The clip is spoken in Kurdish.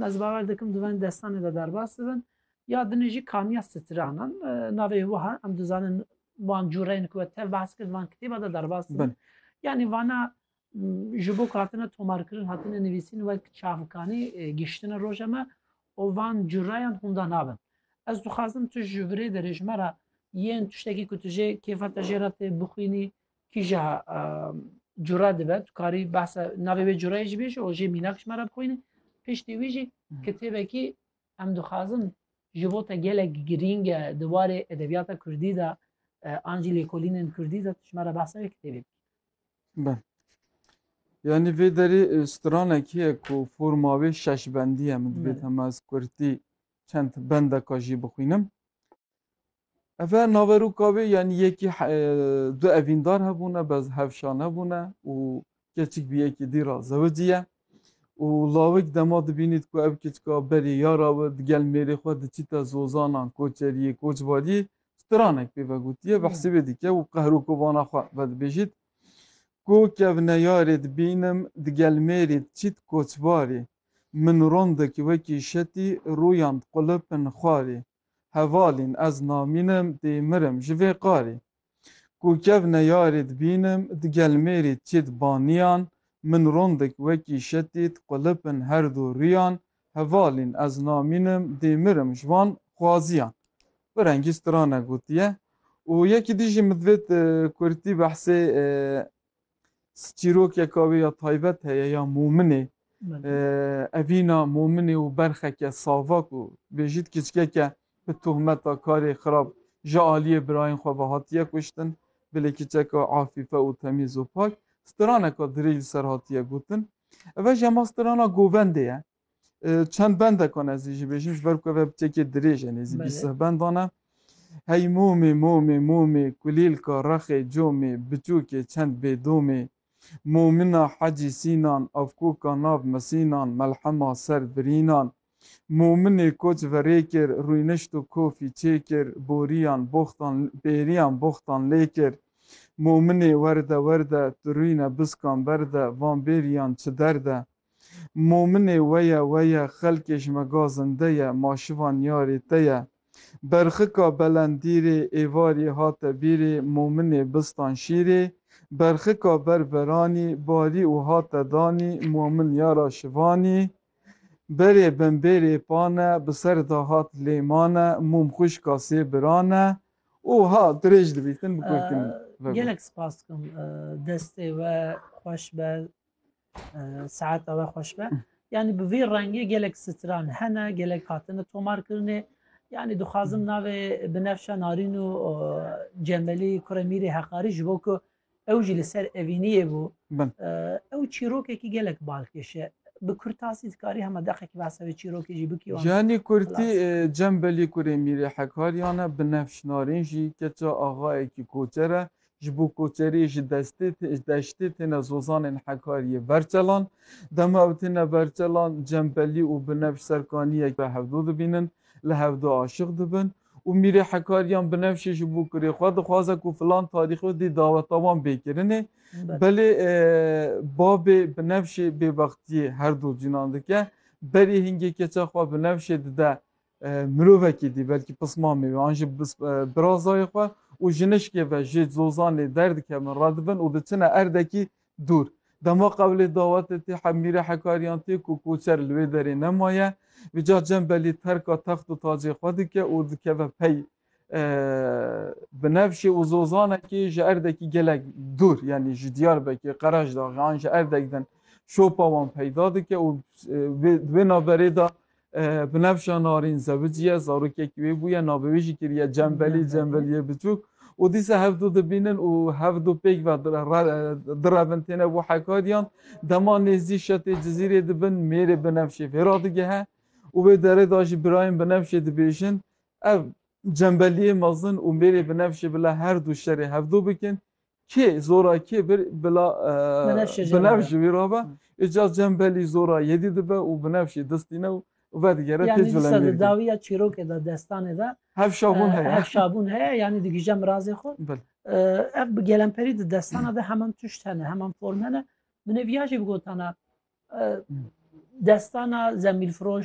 Ez bawer dikim dûvên destanê de derbas dibin. Ya dinê jî kaniya stranan navê wiha em dizanin wan cûreyên ku we tev behs kir van kitêba de derbas dibin. Yanî vana ji bo ku hatine tomarkirin hatine nivîsîn wek çavkanî giştine roja me û van cûreyan hûnda nabin. Ez dixwazim tu ji virê derê ji me re yên tiştekî ku tu jê kêfa te jê re tê bixwînî Kîja cura dibe tu karî behsa navê wê curayê jî bêjî û jê mînak ji me re bixwîne piştî wî jî kitêbekî em dixwazin ji bo te gelek girîng e di warê edebiyata kurdî de an jî lêkolînên kurdî de tu ji me re behsa wê kitêbê bikî Be. Yani vê derê e, stranekî ye ku forma wê şeş bendî ye min divêt Bele. hema ez kurtî çend bendeka jî bixwînim. Efe naverûka wê yanî yekî du evîndar hebûne bez hevşan hebûne û keçik bi yekî dî ra zewicî ye û lawik dema dibînît ku ev kiçika berî yara we digel mêrê xwe diçîte zozanan koçeriyê koçbariyê stranek pê vegotîye bi hesîbê dike û qehroko vana xwe vedibêjît ku kevne yarê dibînim digel mêrê diçît koçbarê min rondekî wekî şetî rûyan diqulipin xwarê Hevalîn ez namînim dê mirim ji vê qarî. Ku kev neyarî dibînim di gelmêrî çîd banîyan min rondik wekî şetît qulipin her du rîyan Hevalîn ez namînim dê mirim ji wan xwazîyan. Bi rengî strana gotiye. Û yekî dî jî min divêt kurtî behsê çîrokeka wê ya taybet heye ya Mominê. Evîna Mominê û berxeke savak û bêjît kiçkeke bi tohmeta karê xirab ji aliyê birayên xwe ve hatiye kuştin. Bilê kiçeka afîfe û temîz û pak, straneka dirêj li ser hatiye gotin. Ev e ji hema strana govendê ye. Çend bendekan ez ê jî bêjim ji ber ku ev têkê dirêj e nêzî bîst seh bendan e. Hey mûmê mûmê mûmê kulîlka rexê comê biçûkê çend bê domê Mûmina hecî sînan avkûka nav misînan melhema ser birînan Mûminê koç verê kir rûynişt û kofî çê kir borîyan boxtan bêrîyan boxtan lê kir Mûminê werde werde tu rûyne biskan berde van bêrîyan çi derde Mominê we ye, we ye, xelkê ji me ga zinde ye, ma şivan yarê te ye. Berxika belend dîrê, êvarî hate bîrê, mominê bistan şîrê, berxika ber beranî, barî û hate danî, momin yara şivanî, berê bimbêrê pane, bi ser da hat lêmane, mom xwişka sê birane û ha dirêj dibî tin bi kurdî min vego. Gelek spas dikim. Destê we xweş be. Saet ewe xweş be. Yani bi vî rengê gelek stran hene, gelek hatine tomarkirinê. Yani dixwazim hmm. navê binefşe narîn û cemelî kurê mîrê heqarî ji bo ku ew jî li ser evîniyê bû. Ew çîrokekî gelek balkêşe. Bi kurtasî dikarî hema deqekî behsa wê çîrokê jî bikî. Yani kurtî cembelî kurê mîrê hekariyane binefş narîn jî keça axayekî koçere. Ji bo koçeriyê ji destê ji deştê têne zozanên Hekariyê berçelan. Dema ew têne berçelan cembelî û binevş serkaniyek bi hevdo dibînin, li hevdo aşiq dibin û mîrê Hekariyan binevşê ji bo kurê xwe dixwaze ku filan tarîxê dê daweta wan bê kirinê. Belê babê binevşê bêbextiyê her du cinan dike. Berî hingê keça xwe binevşê dide Mirovekî dî belkî pismamê wê an jî birazayê xwe û jinişkê ve jê zozanê derdikevin, radibin û diçine erdekî dûr. Dema qewlê dawetê tê hemîrê hekariyan tê ku koçer li wê derê nemaye, vîcar cembelî terka text û tacê xwe dike û dikeve pey Binevşê û Zozanekî ji erdekî gelek dûr yanî ji Diyarbekir, Qeraşdaxê an ji erdek din şopa wan peyda dike û wê naverê de Binevşa Narîn zewicî ye, zarokekî wê bûye, navê wê jî kiriye Cembelî, Cembeliyê Biçûk û dîsa hev du dibînin û hev du pêk ve direvin têne bo Hekariyan. Dema nêzdî şetê Cizîrê dibin mêrê Binevşê vê re digehe û wê derê de jî birayên Binevşê dibêjin Ev cembeliyê mezin û mêrê bi nefşê bila her du şerê hevdu bikin. Kê zora kê bir bila bi nefş ji wî re be. Îca cembelî zora yedî dibe û bi nefşê distîne û vedigere tê culengê dikin. Yanî disa di dawiya çîrokê de, destanê de hevşabûn heye. Hevşabûn heye yanî digihije mirazê xwe. Ev bi gelemperî di destana de heman tişt hene, heman form hene. Min ê viya jî bigotana destana zemîlfiroş,